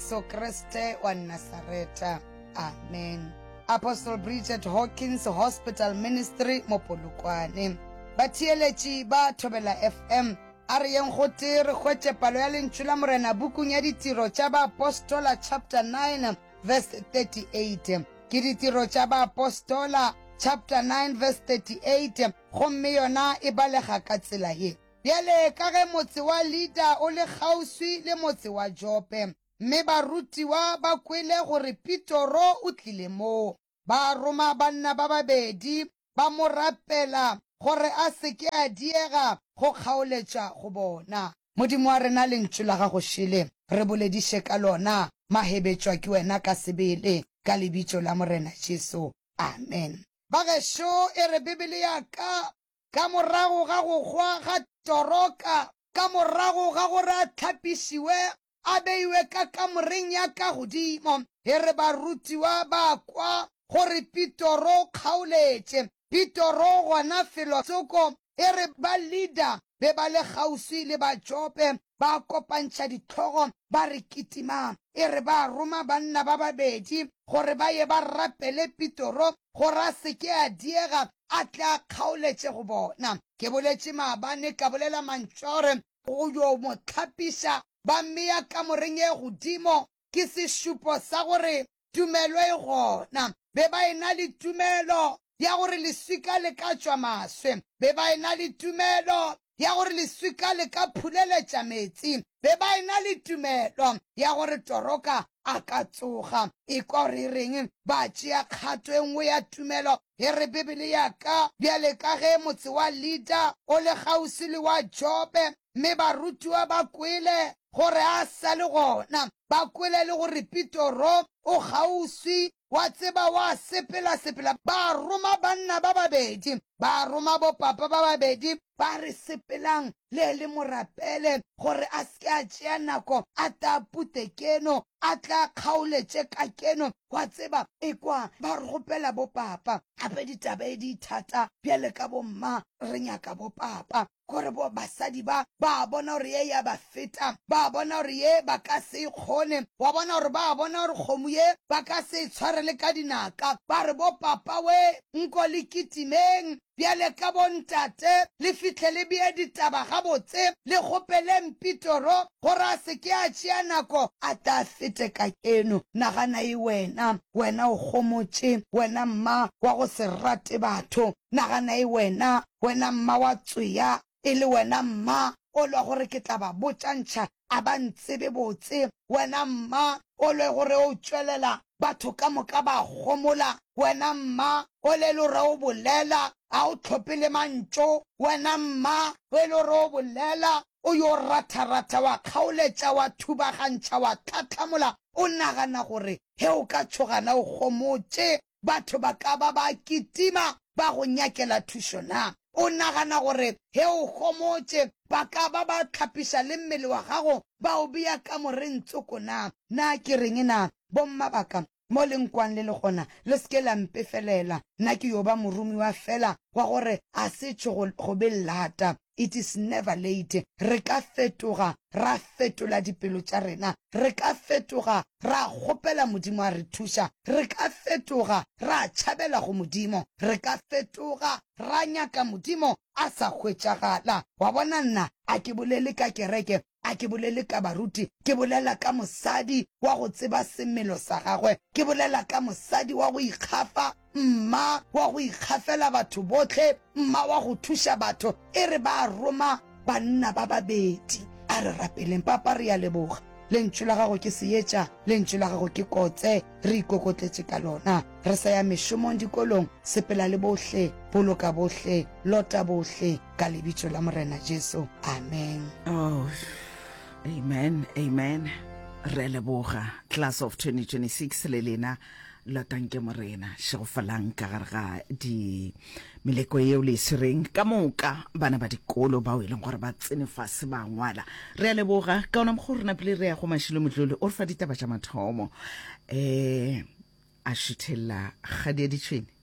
Jesu Kriste wa Nasareta. Amen. Apostle Bridget Hawkins Hospital Ministry mo Polokwane. Batheeletši ba Thobela FM, a re yeng gotee re hwetše palo ya Lentšu la Morena bukung ya Ditiro tša Baapostola chapter 9 verse 38. Ke Ditiro tša Baapostola chapter 9 verse 38, gomme yona e balega ka tsela ye. Bjale ka ge motse wa Lida o le kgauswi le motse wa Jope, mme barutiwa ba kwele gore Pitoro o tlile moo, ba roma banna ba babedi, ba mo rapela gore a se ke a diega go kgaoletša go bona. Modimo wa rena, Lentšu la gago šele re bolediše ka lona. Mahebetšwa ke wena ka sebele, ka Lebitso la Morena Jesu. Amen. Bagešo, e re Bibele ya ka, Ka morago ga go hwa ga Toroka, ka morago ga gore a hlapišiwe, a beiwe ka kamoreng ya ka godimo, e re barutiwa ba kwa gore Pitoro o kgaoletše. Pitoro gona felo tsoko, e re ba Lida be ba le kgauswi le Batšope, ba kopantšha dihlogo ba re kitima. E re ba roma banna ba babedi gore ba ye ba rapele Pitoro gore a se ke a diega a tle a kgaoletše go bona. Ke boletše maabane ka bolela mantšu a gore go yo mo hlapiša, ba mmea kamoreng e godimo ke sešupo sa gore tumelo e gona. Be ba ena le tumelo ya gore leswika le ka tšwa maswe. Be ba ena le tumelo ya gore leswika le ka phuleletša meetse. Be ba ena le tumelo ya gore toroka a ka tsoga. Ekwa gore e reng, ba tšea kgato e nngwe ya tumelo. E re, Bibele ya ka, bjale ka ge motse wa Lida o le kgauswi le wa Jope, mme barutiwa ba kwele gore a sa le gona, ba kwele le gore Petro o kgauswi, wa tseba, wa sepela-sepela. Ba roma banna ba babedi, ba roma bopapa ba babedi, ba re, Sepelang le le mo rapele gore a se ke a tšea nako, a tle a pute keno, a tle a kgaoletše ka keno. Wa tseba, ekwa ba kgopela bopapa. Gape ditaba e di thata bjale ka bomma, re nyaka bopapa. gore bo basadi ba ba bona gore ye ya ba feta ba bona gore ye ba ka se e kgone wa bona gore ba bona gore kgomo ye ba ka se e tshware le ka dinaka ba re bo papa we nko le kitimeng bjale ka bontate le fihle le bee ditaba gabotse le kgopeleng pitoro gore a se ke a tšea nako a tla fete ka keno nagana e wena wena o kgomotše wena mma wa go se rate batho nagana e wena Wena mma wa tswea, e le wena mma o lwa gore ke tla ba botša ntšha, a ba ntsebe botse, wena mma o lwe gore o tšwelela batho ka moka ba gomola, wena mma o le lore o bolela, ga o tlhope le mantšo, wena mma e le gore o bolela, o yo ratharatha, wa kgaoletša, wa thubagantšha, wa tlhatlhamola, o nagana gore ge o ka tšhogana o gomotše, batho ba ka ba ba kitima ba go nyakela thušo na? O nagana gore ge o homotše ba ka ba ba hlapiša le mmele wa gago ba o bea kamoreng tsoko na? Na ke reng na? Bommabaka, mo le nkwang le le gona, le se ke la mpefelela. Nna ke yo ba moromiwa feela wa gore a se tšho go be lata. It is never late. Re ka fetoga, ra fetola dipelo tša rena. Re ka fetoga, ra kgopela Modimo a re thuša. Re ka fetoga, ra tšhabela go Modimo. Re ka fetoga, ra nyaka Modimo a sa hwetšagala. Wa bona, nna a ke bolele ka kereke, A ke bolele ka baruti? Ke bolela ka mosadi wa go tseba semelo sa gagwe. Ke bolela ka mosadi wa go ikgafa, mma wa go ikgafela batho bohle, mma wa go thuša batho. E re ba roma banna ba babedi. A re rapeleng. Papa, re a leboga. Lentšu la Gago ke seetša. Lentšu la Gago ke kotse. Re ikokotletše ka Lona. Re sa ya mešomong, dikolong, sepela le bohle, boloka bohle, lota bohle. ka lebitso la morena jesu amen oh, amen amen re leboga class of 2026 le lena lotanke morena šegofalang ka gare ga di meleko yeo le e swereng ka moka bana ba dikolo bao e leng gore ba tsene fase ba ngwala re a leboga ka ona mogo rena pele re ya go mašilo motlole o re fa ditaba tša mathomo um a šuthelela kgadi ya ditšhwene